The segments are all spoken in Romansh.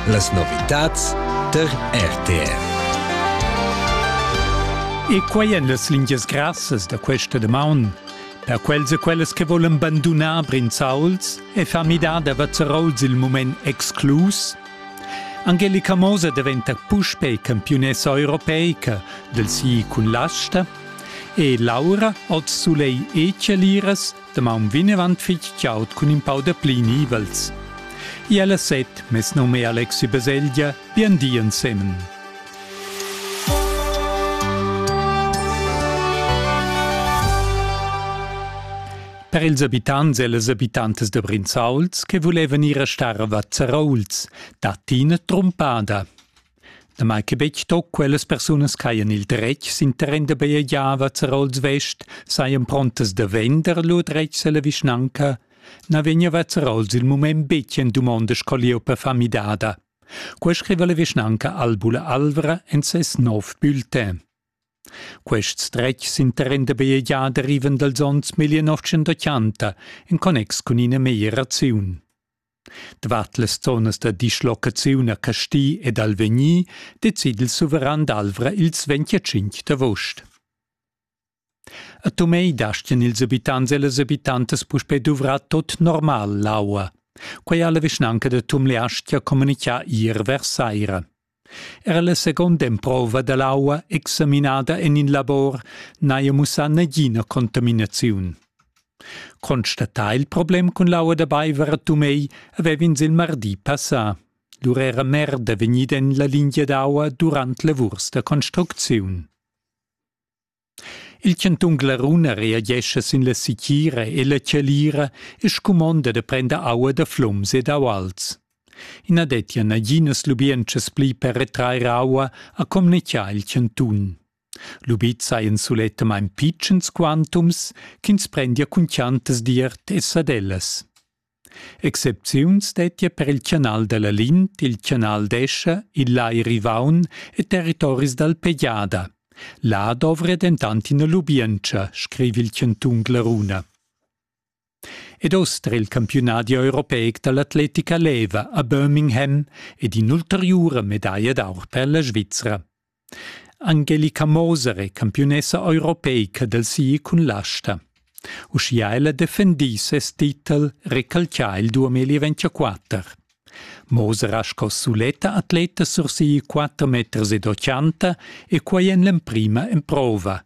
Las novitads tar RTR. E quai èn las lingias grassas da questa damaun. Per quels e quellas che volan bandunar Brinzauls e far midar da Vazzarols il mument exclus, Angelica Moser daventa puspè campiunessa europeica del sì cun l'asta e Laura oz sulei e celiras Damaun vegnevan fitg chaud cun in pau da pli nivels. Iel a set, mes num è Alexi Baselgia, bien di ensemen. Per ils abitants e les abitantes de Brinzauls che volevan ir a star a Vazzarauls, dat ina trumpada. Damai che betg tut quellas persunas ch'hajan il dretg sin terren da bajegiava Zerols Vest sajan prontas da vender lur dretgs alla vischnanca, na vegneva Zerols il mument betg en dumonda sco lieua fa midada. Quei scriva la vischnanca Albula Alvra en ses nov bulletin. Quests dretgs sin terren da bajegiar derivan dals onns 1980 en connex cun ina meglieraziun. Dvat las zonas da dischlocaziun a Casti ed Alvegni decid il suveran d'Alvra ils 25 d'avost. A Tumei dastien ils abitants e las abitantas puspei duvrar tot normal l'aua. Quei ha la vischnanca da Tumleastia communicà ier vers saira. Era la seconda emprova dall'aua examinada en in labor n'haja mussà nagina contaminaziun. Constatà il problem cun l'aua da beiver a Tumei avev'ins il mardi passà. Lur era merda vegnida en la lingia d'aua durant lavurs da construcziun. Il cantun Glarun reagescha sin la sitgira e la chalira e scumonda da prender aua da flums ed auals. I na dettia naginas lubientschas pli per retrair aua, ha communitgà il cantun. Lubids hajan sulettamain pitschens quantums ch'ins prendia cun chiantas d'iert e sadellas. Excepziuns dettia per il canal dalla Lin til canal d'Escha, il lai Rivaun e territoris dal Pejada. Là dovria dentant ina lubientscha, scriva il chantun Glaruna. Ed oster il campiunadi europeic dall'atletica leva a Birmingham ed in'ulteriura medaglia d'aur per la Svizra. Angelica Moser è campiunessa europeica dal ski cun l'asta. Uschia ella defendì ses titel recalcià il 2024. Moser ha sco suletta atleta sursi quatter meters ed ochanta e quai en l'emprima emprova.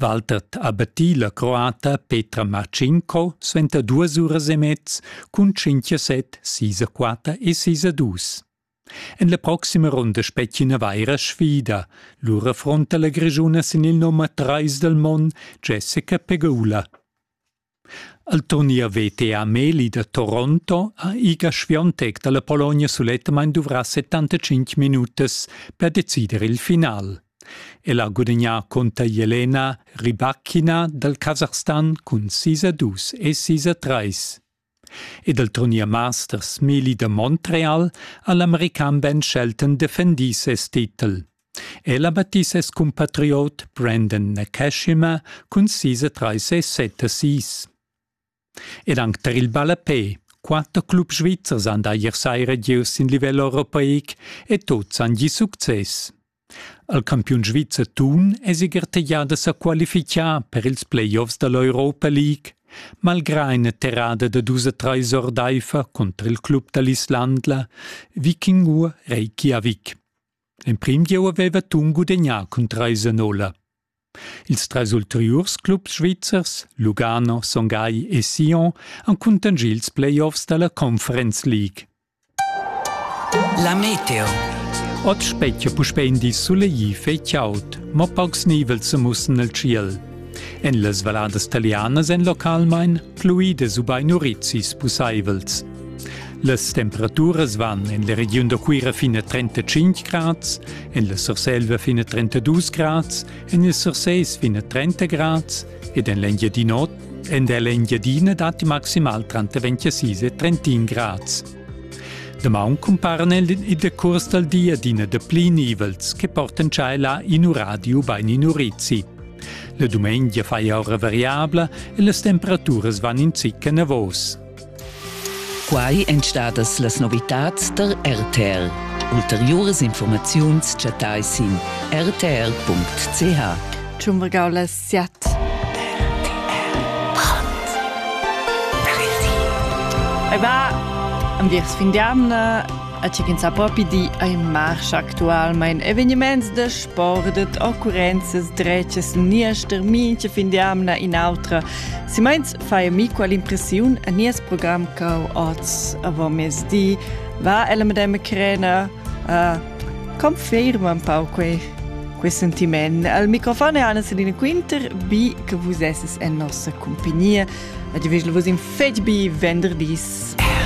Walter ha battì la croata Petra Marcinko suenter duas uras e mez cun tschintg set, sis a quatter e sis a dus. En la proxima runda spetgi ina vaira sfida. Lur affronta la Grischuna sin il nummer trais dal mond, Jessica Pegula. El turnier veta a Meli da Toronto ha Iga Swiatek dalla Pologna sulettamain duvrà 75 minutas per decider il final. El ha gudagnà cunter Jelena Rybakina dal Kasachstan cun 6 a 2 e 6 a 3. Ed al turnier Masters Meli da Montreal ha l'american Ben Shelton defendì ses titel. El ha battì ses cumpatriot Brendan Nakashima cun sis e trais e set assist. Ed anc tar il ballapè. Quatter clubs svizzers han da ier saira gieu sin livel europeic e tuts han gì success. Il campiun svizzer Thun è siger teglià da sa qualifichar per ils playoffs da l'Europa League, malgrà ina terrada da dus e trais ordaifer cunter il club da l'Islandla Vikingur Reykjavik. Emprim gieu aveva Thun gudegnà cun trais a nolla. Ils trais ulteriurs clubs svizzers, Lugano, Son Gagl e Sion, han cuntanschì ils playoffs da la Conference League. La meteo. Oz spetga puspè in di sulegl fei chaud, mo paucs nivels sa mussen nel tschiel. En las valladas talianas èn localmain pluidas ubain urizis pussaivels. Las temperaturas van en la regiun da Cuira fin a 35 grads, en la Surselva fin a 32 grads, en il Surseis fin a 30 grads ed en l'Engiadin'Ota en l'Engiadina datti maximal tranter 26 e 31 grads. Damaun cumparan el i da curs dal di adina da pli nivels che portan tschella in uradio bain in urizi. La dumengia fai ora variabla e las temperaturas van in zic enavos. Quai èn stadas las novitads tar RTL. Ulteriuras informaziuns chattai sin rtl.ch. Tschumbergau la siat. Ei va am dirs fin d'amna a chi ch'ins ha propi di ai marsch actualmain eveniments da sport ed occurrenzas dretgas niester mincha fin d'amna in autra. Si meins fai mi quell'impressiun a nies program cau oz avant mezdi va ella madame Crena uh, conferma un po' quei quei sentiment al microfon è Anna Selina Quinter bi che vus esses en nossa compagnia e di vos in fetg bi venderdis